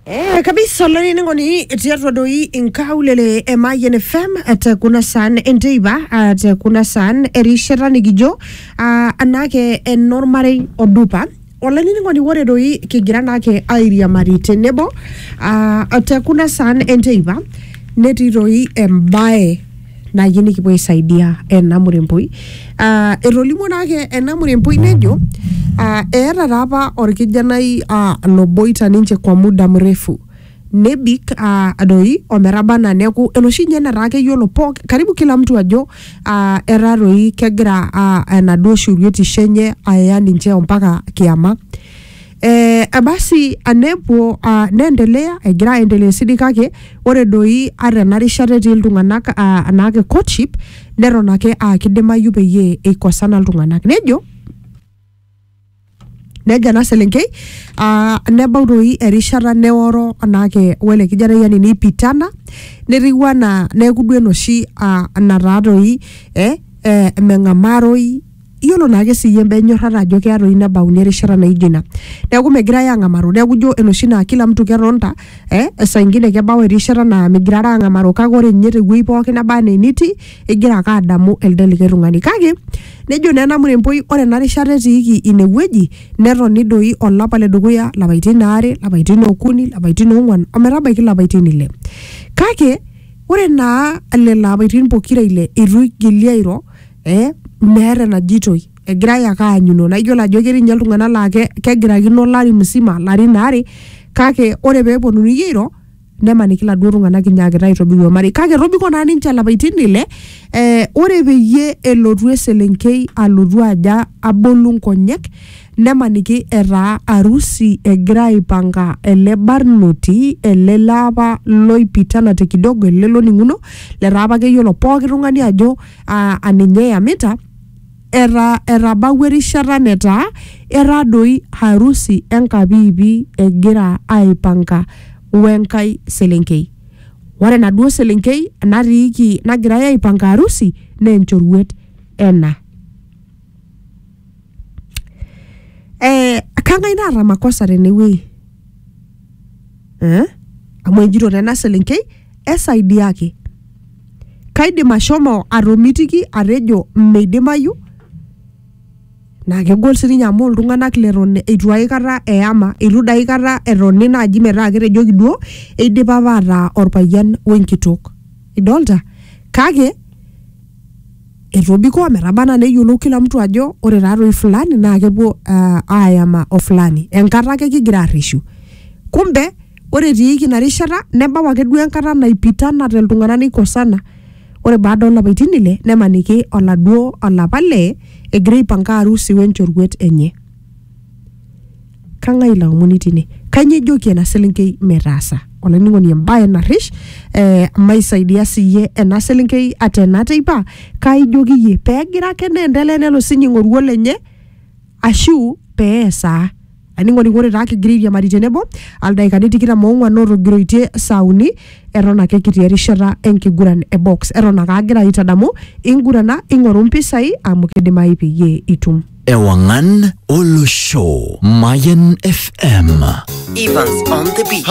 Eh, kabisa olaini ngoni tiatua doi inkaulele e Mayian FM te kuna saan enteipa ah, te kuna saan erishata nikijo ah, anake enormarei odupa olainining'oni ore doi kigira naake airiamari tenebo ah, te kuna saan enteipa netii doi embae naaji nikipuo aisaidia ena muremboi uh, etolimuo naake ena muremboi nejo uh, eeta taa apa orkijanai uh, loboita ninche kwa muda mrefu nebik uh, doi ometaba anaa neeku enoshi nye netaa keyiolo pooki karibu kila mtu ajo uh, etaa doi kegira uh, enaduo shuruetisho enye aya ninche ompaka kiama Eh, basi anepuo ah, neendelea egira aendelea esidai kake ore doi ata ena rishata etii iltung'anak ah, anaake courtship neton ake aa kidimayu peyie eikosana iltung'anak nejo nejo ena selenkei ah, nebau doi erishata neoro anaake wele kijanai yani neipitana netiu anaa neeku duo enoshi ah, nataa doi eh, eh, meng'amaroi iyiolo naake siyie imbaa enyorrata ajo keya toi nebauni erishata naijo ina neeku megirae ang'amaru neeku ijo enoshi naa kila mtu ketonta eh, esaa ingine kebau erishata naa migirara ang'amaru kake ore ninye tewuei pookin naba anaa enitii igira ake adamu elde likae tung'ani kake nejo naa ena muremboi ore ena rishata etiiki inewueji netoni doi olapa ledukuya lapaitin aare lapaitin okuni lapaitin ong'uan ometabaiki ilapaitin ile kake ore naa lelo apaitin pokira ile itu igili airo eh, meeta enajitoi egirae ake aanyuno naa iyiolo ajo ketii ninye iltung'anak laa ke- kegirakino olari musima larin aare kake ore pee eponunui airo nemaniki iladuo tung'anak inyaakita aitobiru ormarei kake etobiko naa ninche ilapaitin ile eh, ore peyie elotu eselenkei alotu aja abolu nkonyek nemaniki etaa arusi egira aipanga ele barnoti ele laapa loipitana te kidogo ele loning'uno letaa apa keyiolo pooki tung'ani ajo aa a ninye eyamita, eta etabawua erishata netaa etaa doi harusi enkapiipi egira aipanga wenkae selenkei. Ore enaduo selenkei natiiki nagirai aipanga harusi naa enchoruet ena. Ee kang'ae naata makosa tenewuei? Ee amu ejito taa ena selenkei esaidiaki. Kaidim ashomo atomitiki atejo meidimayu naa kegol sii ninye amu iltung'anak leton eitu aikata eyama, eitu dii aikata etoni naaji metaa ketejoki duo eidipa apa ataa olpayian wenkitok. Idolita? Kake etobiko ometaba anaa neyiolou kila mtu ajo ore taatoi fulani naa kepuo aayama o fulani. Enkata ake kigira arreshu. Kumbe ore etiiki ina rishata nebau ake duo enkata naipitanate iltung'anak neikosana ore baada olapaitin ile nemaniki oladuo olapa lee egira aipanka arusi wenchoruet enye kang'ae ilo aomoni tine kanyio ijoki ena selenkei metaasa olainining'oni embaye narrish eh, maisaidia siyie ena selenkei ata ena teipa kaijoki iyie pegira ake neendelea nelo sinye aing'oru olenye ashu peesaa Ainining'oni ore taa kigira airiamari tenebo aldaikani tikitam oong'wan ootogiroitie saa uni eton ake kitii erishata enkiguran e box eton ake agira aitadamu ingurana ing'oru mpisai amu kidimayu peyie itum. Ewangan Olosho Mayan FM. Evans on the beat.